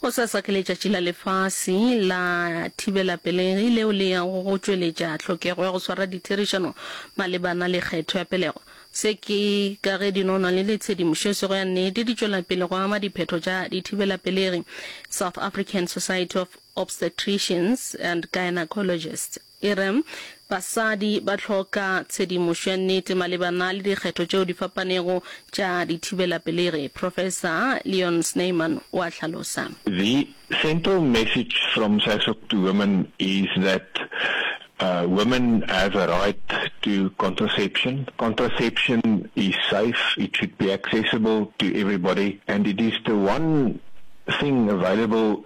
Gosasa ke letšatši la lefase la thibelapelegi leo le yago go tšweletša tlhokego ya go swara ditherišano malebana le kgetho ya pelego. Se ke ka ge dinonwane le tshedimošo e sego ya nnete di tšwela pele go ama diphetho tša dithibelapelegi. South African Society of Obstetricians and Gynecologists. E re, Basadi ba hloka tshedimošo ya nnete malebana le dikgetho tšeo di fapanego tša dithibelapelegi. Profesa Leon Snyman o a hlalosa. The central message from SASOC to women is that women have a right to contraception. Contraception is safe, it should be accessible to everybody and it is the one thing available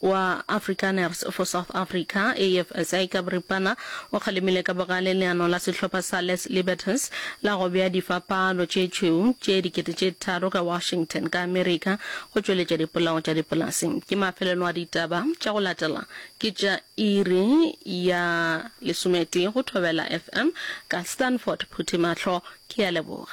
wa Afrikaners for South Africa, AFSA, ka boripana o kgalemile ka bogale leano la sehlopha sa Les Libertins la go bea difapalo tše tšhweu tše dikete tše tharo ka Washington, ka Amerika, go tšweletša dipolao tša dipolaseng. Ke mafelelo a ditaba tša go latela ke tša iri ya lesometee go Thobela FM ka Stanford Phuthimahlo. Ke a leboga.